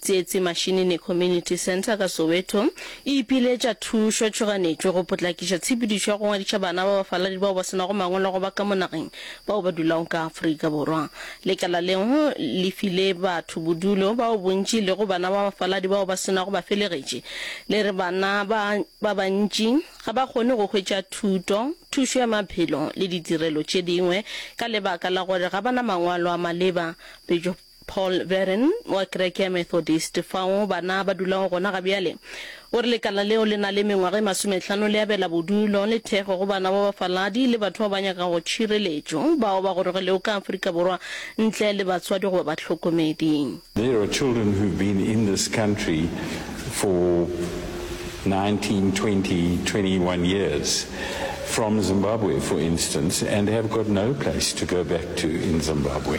Tsietsi Mashinini Community Centre ka Soweto e ipiletša thušo tšhoganetšo go potlakiša tshepedišo ya go ngwadiša bana ba bafaladi bao ba se nago mangwalo go ba ka mo nageng bao ba dulago ka Afrika Borwa. Lekala leo le file batho bodulo bao bontši e lego bana ba bafaladi bao ba se nago bafelegetši le re bana ba ba bantši ga ba kgone go hwetša thuto, thušo ya maphelo le ditirelo tše dingwe ka lebaka la gore ga ba na mangwalo a maleba. Paul Verren, wa kereke ya Methodist fao bana ba dulago gona ga bjale, o re lekala leo le na le mengwaga e masomehlano le abela bodulo le thekgo go bana ba bafaladi le batho ba ba nyakago tšhireletšo bao ba gorogilego ka Afrika Borwa ntle le batswadi goba bahlokomedi. There are children who've been in this country for 19, 20, 21 years from Zimbabwe for instance and have got no place to go back to in Zimbabwe.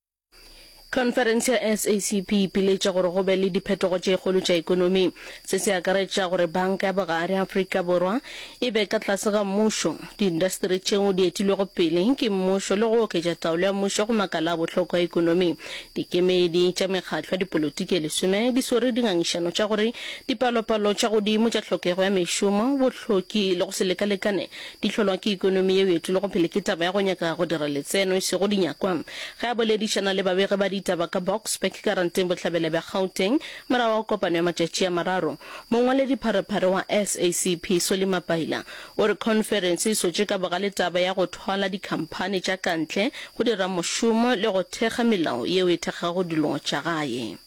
Khonferense ya SACP e ipiletša gore go be le diphetogo tše kgolo tša ekonomi. Se se akaretša gore Banka ya Bogare Afrika Borwa e be ka tlase ga mmušo, diindasteri tšeo di etilwego pele ke mmušo le go oketša taolo ya mmušo go makala a bohlokwa a ekonomi. Dikemedi tša mekgatlo ya dipolotiki e lesome di swere dingangišano tša gore dipalopalo tša godimo tša tlhokego ya mešomo, bohloki le go se lekalekane Di hlolwa ke ekonomi yeo e tšwelego pele ke taba ya go nyaka go dira letseno, e sego dinyakwa. Ge a boledišana le babegi ba ditaba ka Boksburg, Karanteng Bohlabela bja Gauteng, morago ga kopano ya matšatši a mararo, mongwaledipharephare wa SACP, Solly Mapaila, o re khonferense e swetše ka bogale taba ya go thwala dikhamphani tša kantle go dira mošomo le go thekga melao yeo e thekgago dilo tša gae.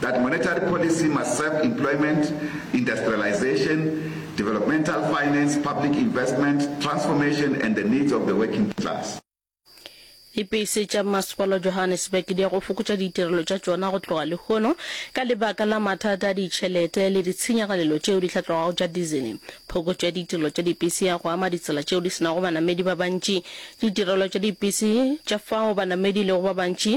That monetary policy must serve employment, industrialisation, developmental finance, public investment, transformation and the needs of the working class. Lipese tša Masepala wa Johannesburg di ya go fokotša ditirelo tša tšona go tloga lehono ka lebaka la mathata a ditšhelete le ditshenyagalelo tšeo di hlatlogago tša dizele. Phokotšo ya ditirelo tša dipese ya go ama ditsela tšeo di se nago banamedi ba bantši, ditirelo tša dipese tša fao banamedi e lego ba bantši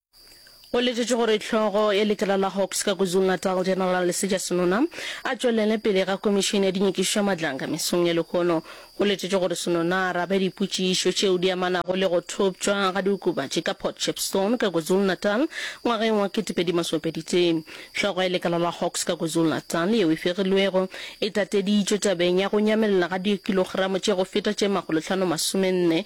Go letšetšwe gore hlogo ya lekala la Hawks ka Kwazulu-Natal General Lesetša Senona a tšwelele pele ga Komišene ya Dinyokišo ya Madlanga mesong ya lehono. Go letšetšwe gore Senona a arabe dipotšišo tšeo di amanago le go thoptšwa ga diokobatši ka Port Shepstone ka Kwazulu-Natal ngwageng wa 2023. Hlogo ya lekala la Hawks ka Kwazulu-Natal yeo e fegilwego e tateditšwe tabeng ya go nyamelela ga diokilogramo tše go feta tše makgolohlano masomenne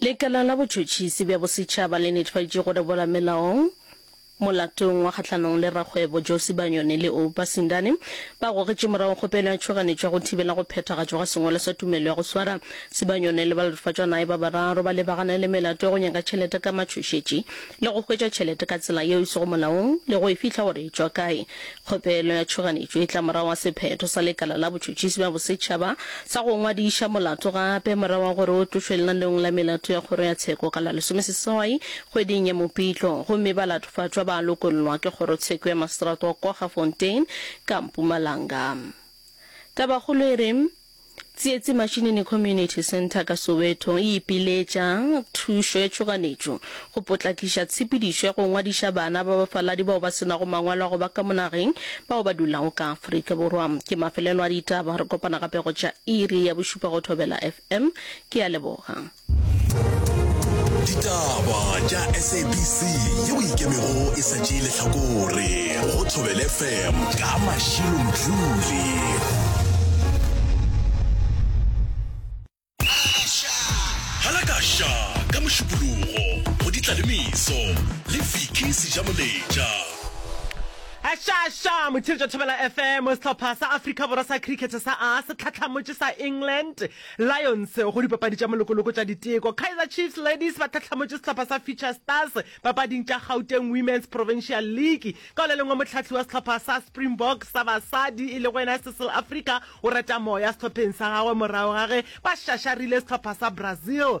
Lekala la Botšhotšhisi bja Bosetšhaba le netefaditše gore boramelaong molatong wa kgahlanong le rakgwebo Josi Banyoni le Oupa Sindane ba gogetše morago kgopelo ya tšhoganetšo ya go thibela go phethagatšwa ga sengwalo sa tumelo ya go swara. Sebanyoni le balatofatšwanae ba bararo ba lebagane le melato ya go nyaka tšhelete ka matšhošetši. le go hwetša tšhelete ka tsela yeo e sego molaong le go e fihla gore e tšwa kae. Kgopelo ya tšhoganetšo e tla morago ga sephetho sa Lekala la Botšhotšhisi bja Bosetšhaba sa go ngwadiša molato gape morago ga gore o tlošwe lenanong la melato ya Kgoro ya Tsheko ka la lesomeseswai kgweding ya Mopitlo gomme ba latofatšwa ba lokollwa ke Kgorotsheko ya Maseterata wa Kwaggafontein ka Mpumalanga. Tabakgolo e re, Tsietsi Mashinini Community Centre ka Soweto e ipiletša thušo ya tšhoganetšo go potlakiša tshepedišo ya go ngwadiša bana ba bafaladi bao ba se nago mangwalo a go ba ka mo nageng bao ba dulago ka Afrika Borwa. Ke mafelelo a ditaba, re kopana gape go tša iri ya bošupa go Thobela FM. Ke a leboga. ditaba tša sabc ye o ikemego e sa tšee lehlakore go thobele fm ka mašilo mdluli halakasha ka mošupologo go ditla le meso le viki sejamoletša Ašaaša motshiri tša Thobela FM sehlopha sa Afrika Borwa sa cricket sa a se tlhatlhamotše sa England Lions go dipapadi tša molokoloko tša diteko. Kaizer Chiefs Ladies ba tlhahlamotše sehlopha sa Future Stars papading tša Gauteng Women's Provincial League. Ka go le lengwe mohlahli wa sehlopha sa Springboks sa basadi e lego yena Cecil Africa o reta moya sehlopheng sa gagwe morago ga ge ba šašarile sehlopha sa Brazil.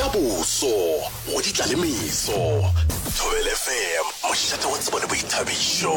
Ja boso go ditla le meso. Thobele FM, mošate wa tsebo le boithabišo.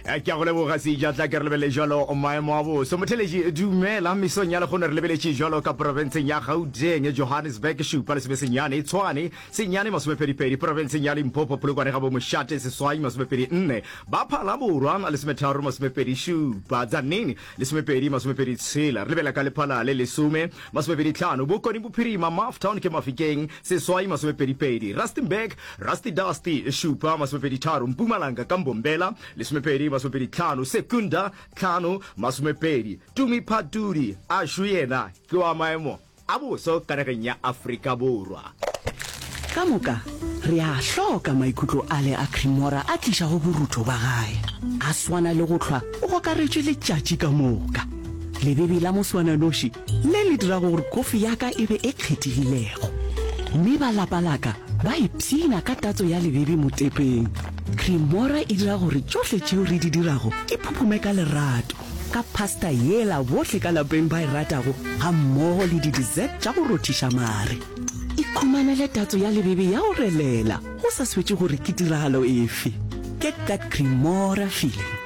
Eh, ke a go leboga seja tla ke re lebelele jalo maemo a boso motheletši dumela mesong ya lekgono re lebeletše jalo ka porofenseng ya gauteng johannesburg šupa le sebe senyane tshwane senyane masomepedipedi porofenseng ya limpopo polokwane ga bo mošate seswai masomepedi nne ba phala borwa lesometharo masomepedi šupa tsanini Lesomepedi masomepedi tshela, re lebela ka lephala le lesome, masomepedi tlhano, Bokone Bophirima, Mafftown ke Mafikeng, seswai, masomepedi pedi, Rustenburg, Rusty Dusty, šupa, masomepedi tharo, Mpumalanga ka Mbombela, lesomepedi masomepedi tlhano, Secunda, tlhano, masomepedi, Tumi Phatudi, a šu yena ke wa maemo. A boso ka nageng ya Afrika Borwa. Ka moka, re a a hloka maikutlo ale a Cremora a tlišago borutho ba gae. A swana le go hlwa o gokaretšwe letšatši ka moka. Lebebi la moswananoši le le dirago gore kofi ya ka e be e kgethegilego. Mme ba lapa la ka ba ipshina ka tatso ya lebebi motepeng. Cremora e dira gore tšohle tšeo re di dirago di phuphume ka lerato. ka pasta yela bohle ka lapeng ba e ratago ga mmogo le di-dessert tša go rothiša mare. Ikhumanele tatso ya lebebe ya go relela go sa swetše gore ke tiragalo efe. Get that Cremora feeling.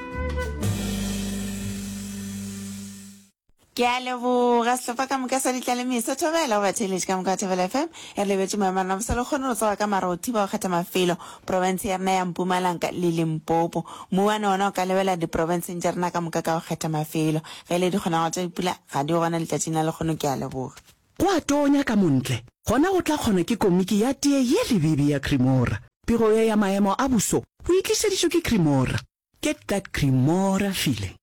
Ke a leboga sehlopha ka moka sa ditlalemeso thobela go batheeletši ka moka wa thobela fm re lebetše moemana bosa le kgone go tsoga ka mara o thiba go kgetha mafelo profense ya rena ya Mpumalanka le Limpopo. Mmu wa nona o ka lebela diprofenseng tša rena ka moka ka go kgetha mafelo. Ge e le dikgonagalo tša dipula, ga di yo gona letšatšing la lekgono. Ke a leboga. Go a tonya ka montle, gona go tla kgona ke komiki ya tee ye lebibi ya Cremora. Pego ye ya maemo a buso go e tlišeditšwe ke Cremora. Get that Cremora feeling.